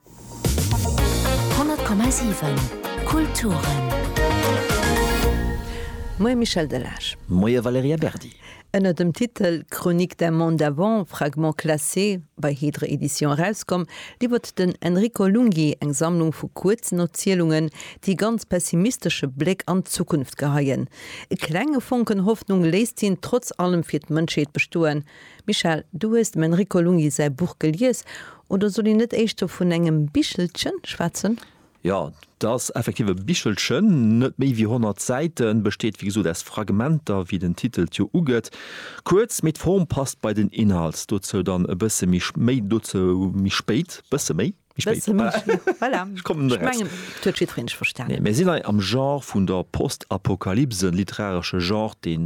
100,7 Kulturen. Moie Michel Delage. Moie Valerija Berdi. Ënner dem Titel Chronique d'un monde d'avant, fragments classés, bei Hydre Edition erauskomm, liwwert den Enrico Lunghi eng Sammlung vu kuerzen Erzielungen, déi e ganz pessimistesche Bléck an d'Zukunft geheien. E klenge Fonken Hoffnung léisst hien trotz allem fir d'Mënschheet bestoen, Michèle, du hues dem Enrico Lunghi säi Buch gelies, oder soll een net éischter vun engem Bichelchen schwätzen? Jo, et ass effektiv e Bichelchen, net méi wéi 100 Säiten, besteet wéi gesot aus Fragmenter, wéi den Titel et jo ugëtt. Kuerz, mee d'Form passt bei den Inhalt. Dozou dann e bësse méi, méi dozou méi spéit, bësse méi. Mir sinn hei am Genre vun der Postapokalypse, literaresche Genre, dee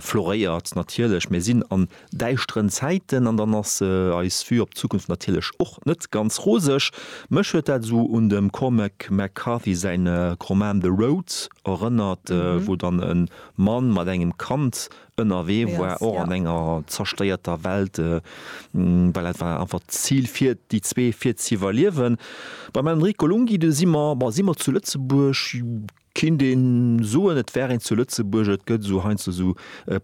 floréiert natierlech. Mir sinn an däischteren Zäiten an dann ass eis Vue op d'Zukunft natierlech och net ganz roseg. Mech huet dat esou un dem Cormac McCarthy säin Roman The Road erënnert, wou dann e Mann mat engem Kand ënnerwee war, och an enger zerstéierter Welt, well dat war einfach d'Zil fir déi zwee, fir z'iwwerliewen. Beim Enrico Lunghi, do si mer, si mer zu Lëtzebuerg, kinnt ee soen, et wär een zu Lëtzebuerg, et gëtt esou heiansdo esou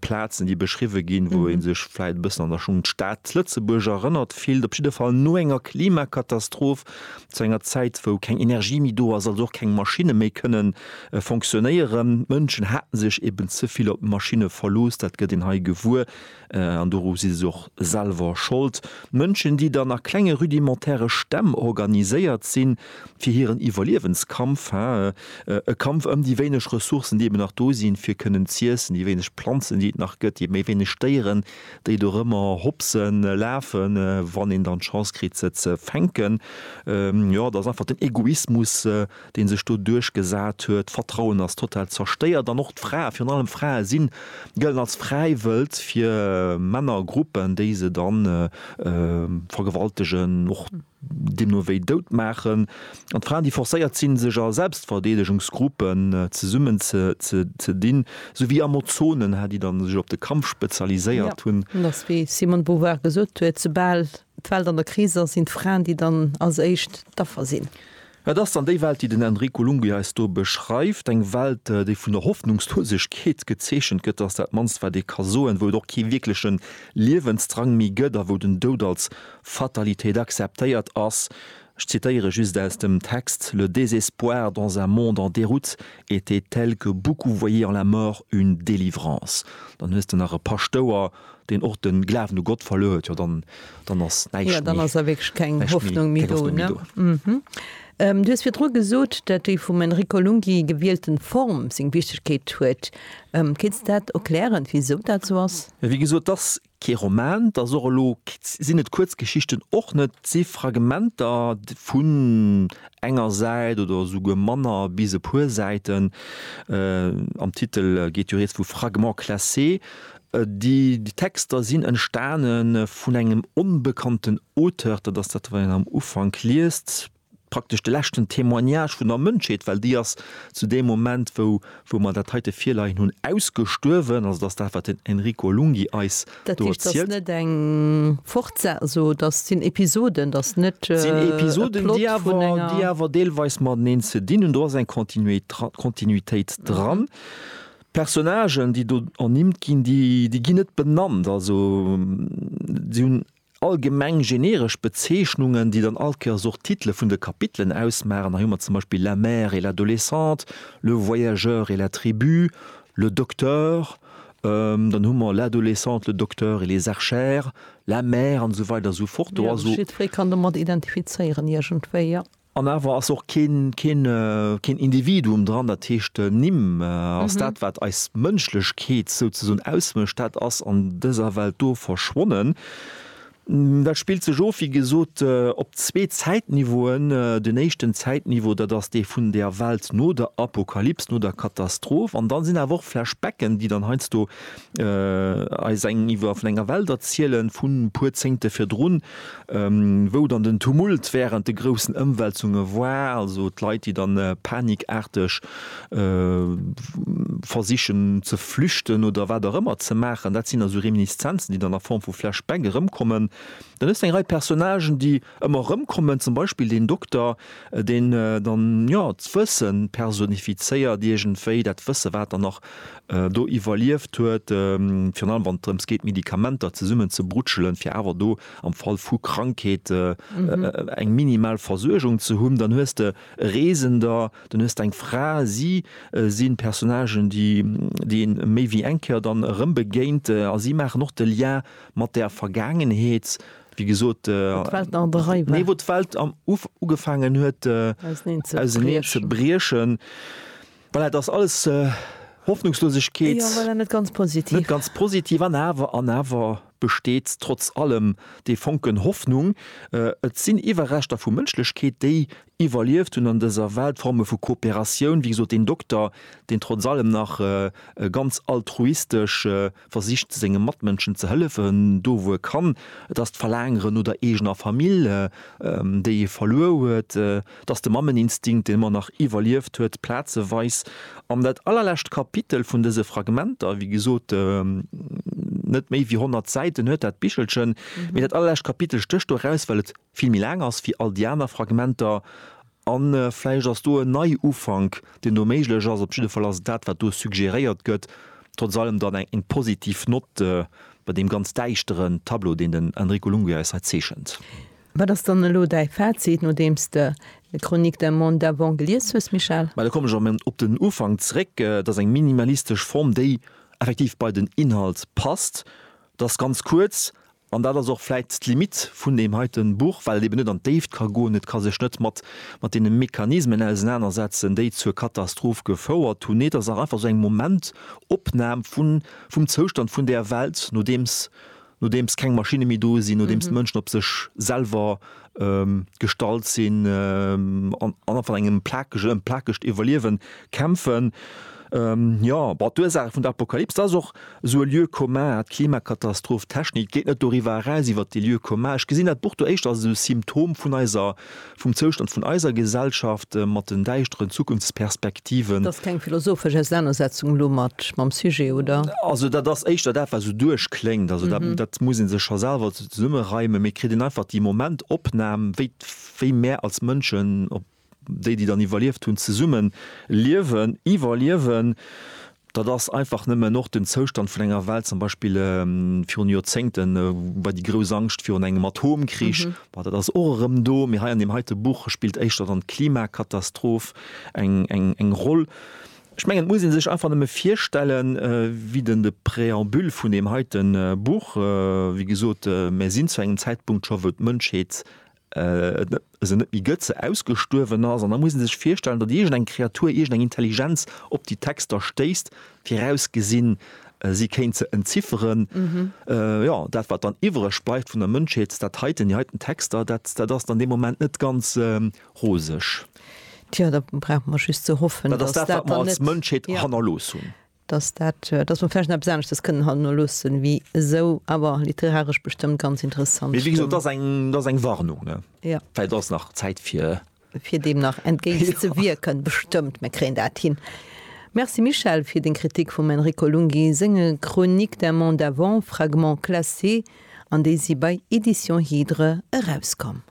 Plazen, déi beschriwwe ginn, wou ee sech vläicht e bëssen an der Schong un d'Stad Lëtzebuerg erënnert fillt. Op jidde Fall no enger Klimakatastrof Zu enger Zäit, wou keng Energie méi do ass, also och keng Maschinne méi kënnen fonctionnéieren. D'Mënschen haten sech eben ze vill op d'Maschinne verlooss, dat gëtt een hei gewuer, an doru si se och selwer Schold. Mënschen, déi dann a klenge rudimentäre Stämm organiséiert sinn, fir hiren Iwwerliewenskampf, he, e Kampf ëm déi wéineg Ressourcen, déi eben nach do sinn, fir kënnen z'iessen, déi wéineg Planzen, déi et nach gëtt, déi méi wéineg Déieren, déi do rëmmer hopsen, lafen, wann een dann d'Chance kritt se ze fänken, jo, dat ass einfach den Egoismus dee sech do duerchgesat huet, d'Vertrauen ass total zerstéiert an och d'Frae, virun allem d'Frae sinn, gëllen als Fräiwëld fir Männergruppen, déi se dann vergewaltegen och. deemno wéi dout maachen, an d'Fraen, déi forcéiert sinn, sech a Selbstverdeedegungsgruppen zesummen ze dinn, sou wéi Amozonen, hat, déi dann sech op de Kampf spezialiséiert hunn. Jo, et ass wéi d'Simone de Beauvoir gesot huet, soubal d'Welt an der Kris ass, sinn d'Fraen, déi dann als éischt d'Affer sinn. Et ass dann déi Welt, déi den Enrico Lunghi eis do beschreift, eng Welt, déi vun der Hoffnungslosegkeet gezeechent gëtt, dat ass dat mannst, wat ee ka soen, wou et och kee wierkleche Liewensdrang méi gëtt a wou den Doud als Fatalitéit akzeptéiert ass. Ech zitéiere just aus dem Text, Le désespoir dans un monde en déroute était tel que beaucoup voyaient en la mort une délivrance. Dann hues de nach e Paschtouer. deen och den Glawen u Gott verluer huet, jo dann dann ass näischt méi jo dann ass da wierklech keng Hoffnung méi do ne. Du hues virdru gesot, dat déi vum Enrico Lunghi gewielten Form seng Wichtegkeet huet. Kéints dat erklären wisou dat sou ass? Wéi gesot, et ass kee Roman, et ass och elo sinn et Kuerzgeschichten och net, et si Fragmenter vun enger Säit oder esouguer manner bis e puer Säiten. Am Titel geet jo rieds vu Fragments classés. Déi Texter sinn entstane vun engem onbekannten Auteur, dat ass dat, wat een am Ufank liest, praktesch de leschten Témoignage vun der Mënschheet, well déi ass zu deem Moment, wou mer dat heite virleien hunn, ausgestuerwen. Also dat ass dat, wat den Enrico Lunghi eis do erzielt. Dat heescht, et ass net eng Fortse-, also dat sinn Episoden, dat ass net e Plot vun enger. Et sinn Episoden, déi awer deelweis mateneen ze dinn hunn. Do ass eng Kontinuitéit dran. D'Personnagen, déi do ernimmt ginn, déi ginn net benannt. Also se hunn allgemeng generesch Bezeechnungen, déi dann all Kéiers och d'Titele vun de Kapitelen ausmaachen. Hei hu mer zum Beispill La mère et l'adolescente, Le voyageur et la tribu, Le docteur, dann hu mer L'adolescente, le docteur et les archères, La mère an esou weider esou fort. Do ass. Jiddweree kann domat identifizéieren iergendwéi, jo. An awer ass och keen, keen, keen Individuum dran, dat heescht d'Nimm ass dat, wat eis Mënschlechkeet souzesoen ausmécht, dat ass an dëser Welt do verschwonnen. Dat spillt sech of, wéi gesot, op zwee Zäitniveauen. Den éischten Zäitniveau, dat ass dee vun der Welt no der Apokalyps, no der Katastroph. An dann sinn awer och Flashbacken, déi dann heiansdo eis eng iwwer vun enger Welt erzielen vun e puer Zéngte virdrun, wou dann den Tumult wärend de groussen Ëmwälzunge war, also d'Leit, déi dann panikaarteg versichen ze flüchten oder wat och ëmmer ze maachen. Dat sinn also Reminiszenzen, déi dann a Form vu Flashback erëmkommen. Dann hues de eng Rei Personnagen, déi Ëmmer erëm kommen zum Beispill deen Dokter, deen dann, jo, d'Wësse personifizéiert iergendwéi, dat Wësse, wat en nach do iwwerlieft huet, virun allem wann et drëms geet, Medikamenter zesummen ze brutschelen, fir awer do am Fall vu Krankheet eng minimal Versuergung ze hunn. Dann hues de Reesender, dann hues de eng Fra. Si si Personnagen, déi een méi wéi eng Kéier dann erëm begéint a si maachen och de Lien mat der Vergaangenheet. wéi gesot, wou d'Welt nach an der Rei war, nee, wou d'Welt am Uf ugefaangen huet auserneen ze briechen, voilà, et ass alles Hoffnungslosegkeet, jo, voilà, net ganz positiv, net ganz positiv, an awer, an awer besteet trotz allem dee Fonken Hoffnung, et sinn Iwwerreschter vu Mënschlechkeet, déi iwwerlieft hunn an dëser Welt, Forme vu Kooperatioun, wéi gesot, deen Dokter, deen trotz allem nach ganz altruistesch, versicht senge Matmënschen ze hëllefen, do wou e kann, et ass d'Verlaangere no der eegener Famill, déi ee verluer huet, et ass de Mammeninstinkt, deen ëmmer nach iwwerlieft huet, plazeweis. An dat allerlescht Kapitel vun dëse Fragmenter, wéi gesot, net méi wéi 100 Säiten huet dat Bichelchen, mee dat allerlescht Kapitel stécht do eraus, well et vill méi laang ass wéi all déi aner Fragmenter An vläicht ass do en Neiufank, deen do méiglech ass. Op jidde Fall ass dat, wat do suggéréiert gëtt, trotz allem dann eng positiv Nott bei deem ganz däischteren Tableau, deen den Enrico Lunghi eis hei zeechent. Wat ass dann elo däi Fazit, nodeems de Chronique d'un monde d'avant gelies hues, Michel? Mä da kommen ech erëm op den Ufank zréck. Et ass eng minimalistesch Form, déi effektiv bei den Inhalt passt. Et ass ganz kuerz, An dat ass och vläit d'Limite vun deem heite Buch, well et eben net an d'Déift ka goen. Et ka sech net mat deene Mechanismen ausenanersetzen, déi zur Katastroph gefouert hunn. Nee, et ass och einfach esou eng Momentopnam vum Zoustand vun där Welt, nodeems keng Maschinne méi do sinn, nodeems d'Mënschen op sech selwer gestallt sinn an an van engem plakege ëm plakegt Iwwerliewen kämpfen. Jo, bon, d'Ursaache vun der Apokalypse ass och esou e Lieu commun, d'Klimakatastroph, d'Technik geet net doriwwer eraus, iwwer dee Lieu commun. Ech gesinn dat Buch do éischter als esou e Symptom vun eiser, vum Zoustand vun eiser Gesellschaft mat den däischteren Zukunftsperspektiven. Et ass keng philosophesch Ausenanersetzung elo mat, mam Sujet, oder? Also dat ass éischter dat, wat esou duerchkléngt. Also dat, dat muss ee sech scho selwer Zesummereime, mee kritt een einfach déi Momentopnam, wéi wéi mär als Mënschen, op déi déi dann iwwerlieft hunn, zesumme liewen, iwwerliewen. Dat ass einfach nëmmen och den Zoustand vun enger Welt, zum Beispill virun Joerzéngte war déi grouss Angscht virun engem Atomkrich, ma dat ass och erëm do. Mee hei an deem heite Buch spillt éischter dann d'Klimakatastroph eng eng eng Roll. Ech mengen, et muss ee sech einfach nëmme virstellen, wéi den de Präambül vun deem heite Buch, wéi gesot, mär sinn zu engem Zäitpunkt scho, wou d'Mënschheet et net, se net méi gëtt, se ausgestuerwen ass. An da muss ee sech virstellen, datt iergend eng Kreatur, iergend eng Intelligenz op déi Texter stéisst, virausgesinn, si kéint se entzifferen. Jo, dat, wat dann iwwreg bleift vun der Mënschheet, dat heiten, déi heiten Texter, dat, dat ass dann dee Moment net ganz roseg. Tja, da brauche mer just ze hoffen, Dat ass dass dat, wat dat mer dann als net, Mënschheet ja, hannerlooss hunn. dass dat, äh, dass mer vläicht nach eppes aneschtes kënnen hannerloossen, wéi esou awer literaresch bestëmmt ganz interessant Mee wéi gesot, dat Stëmm. ass eng, dat ass eng Warnung, ne? Ja. Vläicht ass nach Zäit fir. fir deem nach entgéint ze Ja. wierken. Bestëmmt, mir kréien dat hin. Merci Michel fir deng Kritik vum Enrico Lunghi senge Chroniques d'un monde avant, fragments classés, an déi si bei Editions Hydre erauskomm.